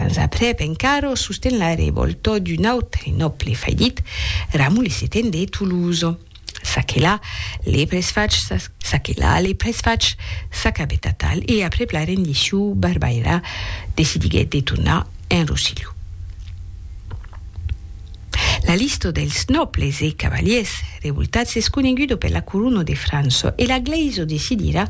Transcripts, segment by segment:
Ans aprèp encara, sosten la revòlta d'un autre nòble faillit, Ramulh Setent de Toulouse. Saquelà le presfach Saquelà le presfach s'acabèt atal e aprèp la rendicion Barbaira decidiguèt de tornar en Rossilhon. La lista dels nòbles e cavaliers revoltats es coneguda per la corona de França e la glèisa decidira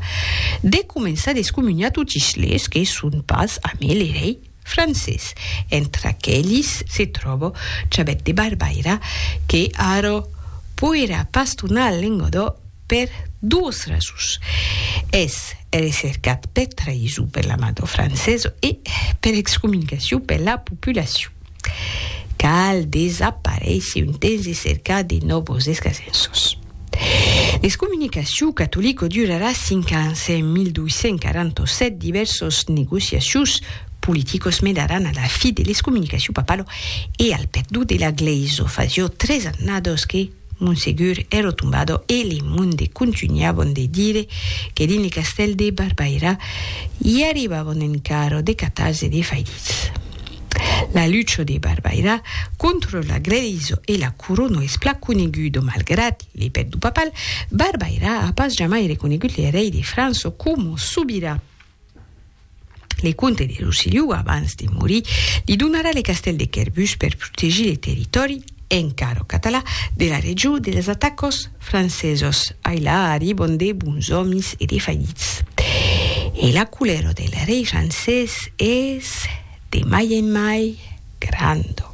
de començar d'excomuniar totis les que son pas amé le rei francés. Entre aquelis se tròba Chabet de Barbaira que ara poirà pas tornar al Lengadó per duas rasons. Es recercat per traïson per l'ambassador francés e per excomunicacion per la populacion. Cal desaparéisser un temps e cercar de nòvos escasenços. L'excomunicacion catolico durarà cinc ans. En 1247 divèrsos negociacius politicos menaràn a la fi de l'excomunicacion papalo e al perdon de la Glèisa. Fasió tres annadas que, Monsegur ero tombado e li monde contunhavon de dire que dins le castèl de Barbaira i arribavon en carro de catars e de faidits. La lucho de Barbaira contro l'agredizo e la corono es plan conegudo malgrat le pèt du papal, Barbaira a pas jamai reconegut le rei de França como sobirà. Le comte de Rossillon, abans de morir, li donarà le castèl de Quèrbus per protegir le territòri, encara catalan, de la region dels atacants francesos. Ai la, arribon de bons òmis e de fallits. E la colèra del rei francés es de mai en mai. Grando.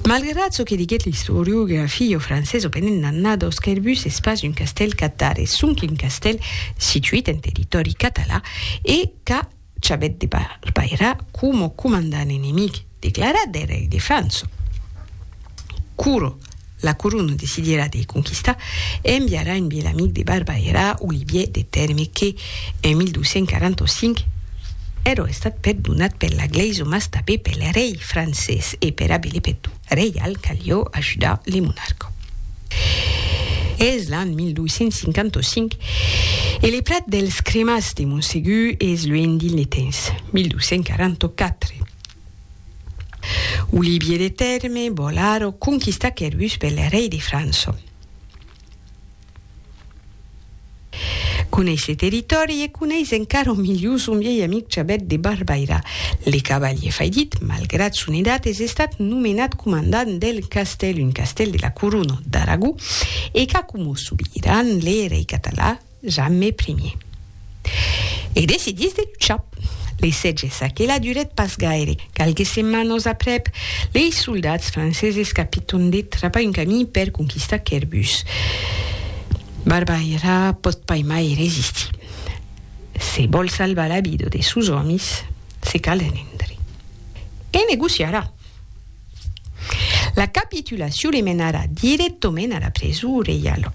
Malgrat çò que diguèt l'istoriograf e filho francés Openet Nannados qu'er bus es pas un castèl catar, es sonque un castèl situit en territòri catalan e qu'a chabèt de barbairar coma comandant enemic declarat dei rei de França. Curo. La corona decidirà de conquistar e enviarà un biel amic de Barba era Olivier de Tèrme que, en 1245, èrò estat perdonat per la glèisa mas tabé pel rei francés e pera Belepèt reial calió ajudar le monarca. Es l'an 1255 e le plat dels cremats de Montsegur es luenh d'Illetens, 1244. Olivier de Tèrme, Bolaro, conquista Quervus per le rei de França. Coneis ce territòri e coneis encara milhor son vielh amic Chabèt de Barbaira. Le cavalier faidit, malgrat son edat, es estat nomenat comandant del castèl, un castèl de la corona d'Aragó, e qu'a coma sobiran le rei català, Jamais primier. E decidís de luchar. Lei sètge s'aquela durèt pas gaire. Qualques setmanas aprèp, lei soldats franceses capiton de trapar un camí per conquistar Querbus. Barbaira pòt pas mai resistir. Se vòl salvar la vida de sos òmis, se cal rendre. E negociarà. La capitulacion le menarà dirèctament a la presó reiala.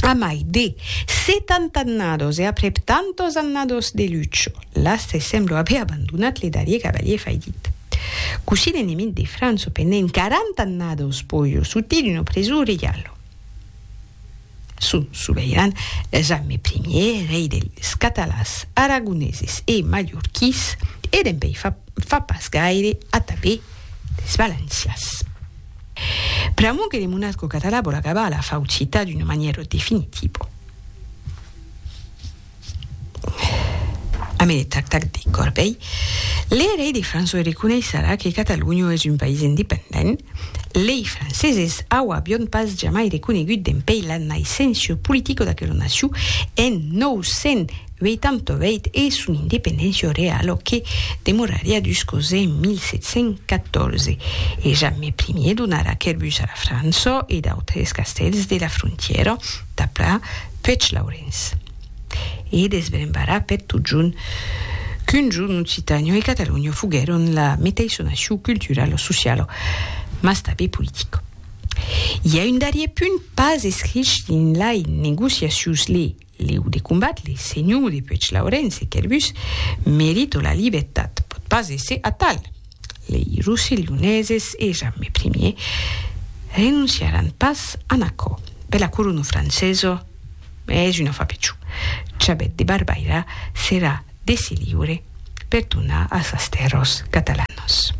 A mai de setanta annados e aprèp tantos annados de lucha, l'Astre sembla aver abandonat le darrier cavalier faidit. Cossí l'enemic de França pendent quaranta annados pòjo sortir d'una preson reiala. Son soveiran Jaime I, rei dels catalans, aragoneses e mallorquís e dempèi fa pas gaire atabé dels valencians. Pr'amor que le monatco catalan vòl acabar la faucita d'una manièra definitiva. Amede tac tac de Corbei, le rei de França reconeisserà que Catalonha es un país independent, lei franceses auavion pas jamai reconegut dempeis la naissencia politica d'aquela nacion en 900, Uèi tanto veit e son independéncia realo que demorariá dus cos en 1714, e Jamme Ier donarà Querbus a la França e d'autres castèls de la frontièra tapla Puech Laurenç e desbrembarà per totjorn qu'un jorn Occitània e Catalonha foguèron la meteissa nacion culturala, sociala, mas tanbe politica. I a un darrier punt pas escrich dins lai negociacions, le Leu de combat, le senhor de Puèglaurens e Querbus merito la libertat, pòt pas èsser atal. Lei rosselhoneses e Jamme Primier renonciaràn pas an aquò. Per la corona francesa es una fapichon. Chabèt de Barbaira serà dese liure per tornar a sas tèrras catalanas.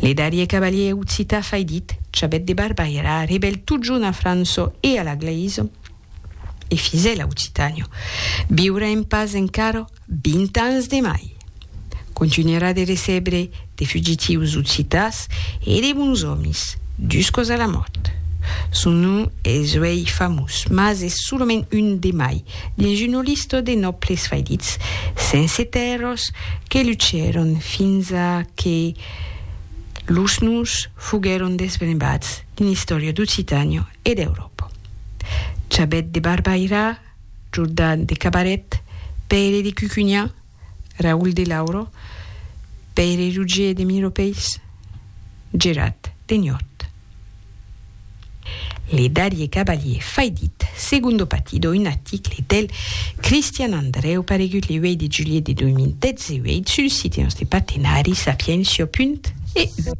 Le darrier cavalier occità faidit, Chabèt de Barbaira, rebèl totjorn a França e a la Glèisa, E fisè l'Aucitània. Viurà en pas encara 20 ans de mai. Continuarà de recebre de fugitius occitàs e de bons òmis, juscos a la mòrt. Son nom es uèi famós, mas es solament un de mai, dins una lista de nòbles faidits, sense tèrras, que luchèron fins a que los noms foguèron desbrembats dins l'istòria d'Occitània e d'Euròpa. Chabet de Barbaira, Jordan de Cabaret, Pèire de Cucugna, Raül de Lauro, Pèire Rogier de Miropèis, Gerat de Niort. Le darrier cavalier faidit, Segundo Patido, un article del Cristian Andreu paregut le 8 de julhet de 2018 sul site nòste partenari sapientia.eu.